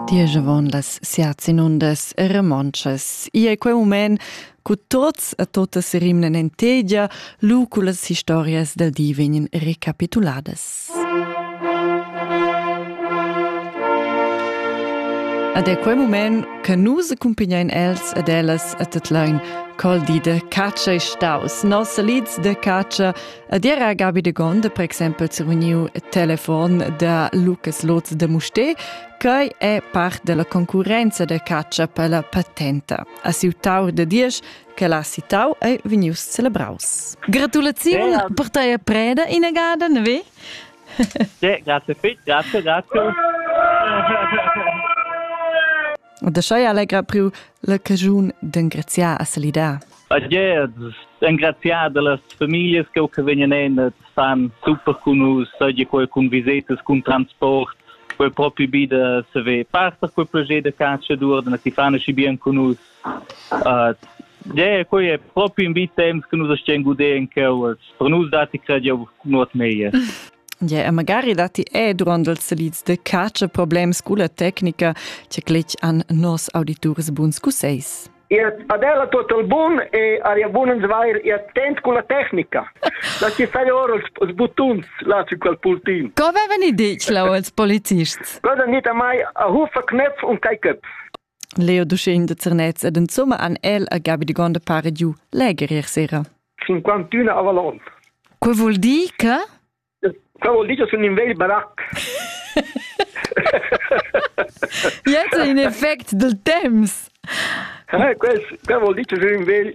Diesch avon las siat inundas e remontschas. Ia è quei moment cu tots e totas rimnen en tegia, lu cu las historias del di vegnan recapituladas. Ed è quei moment che nus accumpignein els ed ellas a tut lein col di de catscha e staus. Nos lids de catscha Ed era Gabi de Gonde, per exempel, se uniu telefon da Lukas Lotz de Mustè, quei è part della concurenza de caccia per la patenta. A siu taur de diesch che l'ha citau ei vegnius celebraus. Gratulaziun yeah. per tei preda inegada, ne ve? sì, grazie Fit, grazie, grazie. da schei allegra priu la cagiun d'engraziar a salidar. A Gez, engraziar dallas familias che che vegnan en san super cun us, seigi quei cun visetas, cun transport, quei propi bi da se ve parta quei proget da catscha dur da ti fan schi bien cun us. Uh, Ja, quei è proprio in vita temps che nus stiamo godendo quellas. Per nus dati crediamo nuot meglio. Yeah, magari dati è durant els selids de caccia problems cu la tecnica che cletg an nos auditurs buns cuseis. Ihr adela total bun e aria bun uns vair e attent cu la tecnica. La ci fai ora els buttons là su quel pultin. Co veven i dic lau els policists? Cosa nita mai a hufa knöpf und kai köpf. Leo ducin de Zernez ed insomma an el a Gabi de Gonde pare giu leger ier sera. 51 avalon. Quo vuol dir che? Quo vuol dir che sun in vegl barac. Jetzt in effect del temps. Eh, quel, quel vuol dir che sun in vegl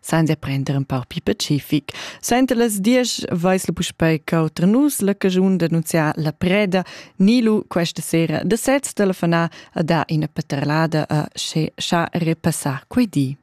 Sainza prender un pau più pacific. Sainta las diesch vais la puspei cauter nus la cagiun d'annunziar la preda Nilu questa sera da sez telefona a da ina paterlada a che scha repassar quei di.